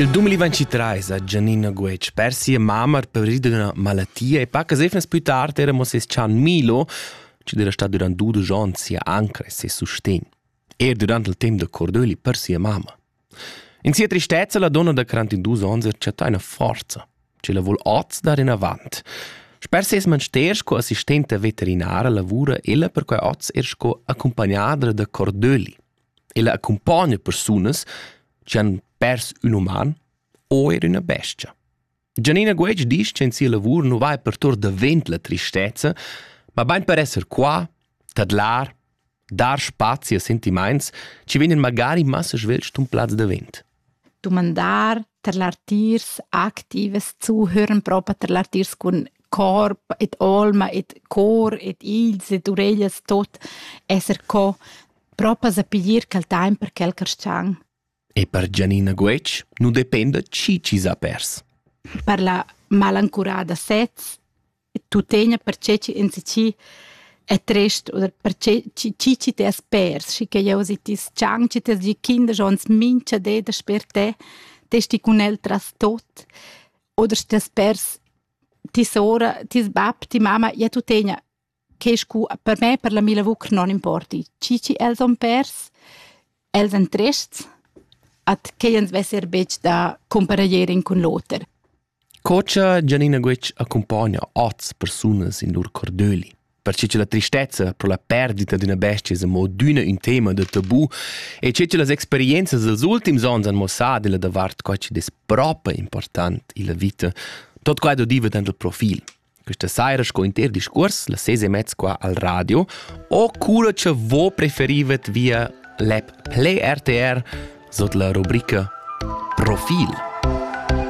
Il 2023 ha Giannina Guetg per sia mamma paurida d'una malattia e paca sefnas più tard era mo ses chan Milo, che era stato durant dudisch onns sia anca e ses sustegn. Er durant il tempo da cordoeli per sia mamma. In sia tristezza la donna da 42 onns ha chattà una forza, che la vuol oz dar in avant. Sper ses manster sco assistenta veterinara lavura ella per quei oz er sco accompagnadra da cordoeli. Ella accumpogna persunas che han pers ün uman o er üna bestia. Gianina Guetg disch che in sia lavur nu vai per tour davent la tristezza, ma bain per esser qua, tadlar, dar spazi a sentimaints chi vegnan magari massa svelt stumplats davent. dumandar tar l'artiers activas zuhören propa tar l'artiers cun corp ed olma ed cor ed igls ed ureglias tot esser co propa sa piglier quel taimp per quel carschang. E per Gianina Guetg nu dependa chi chi s'ha pers. Per la malancurada sez tuttegna perche chi insatgi è trist oder perché chi chi chi t'es pers schi che jeu si ti chang chi t'es di kinder jons mincha de da sper te te sti cun el tras tot oder stes pers ti sora ti bab ti mama ja tu tegna che scu per me per la mila vuc non importi chi chi els on pers els en trists at che jens vesser bec da comparaierin cun l'oter Co cha Gianina Guetg accumpogna oz persunas in lur cordöli. Perche cha la tristezza pro la perdita d'üna bestia es amo adüna ün tema da tabù e che cha las experienzas dals ultims ons han mossà della davart co chi'd es propa important illa vita, tot quai do diva dand il profil. Questa saira sco inter discuors, la ses e mezz qua al radio, o cura cha vo preferivet via l'app Play RTR sot la rubrica Profil.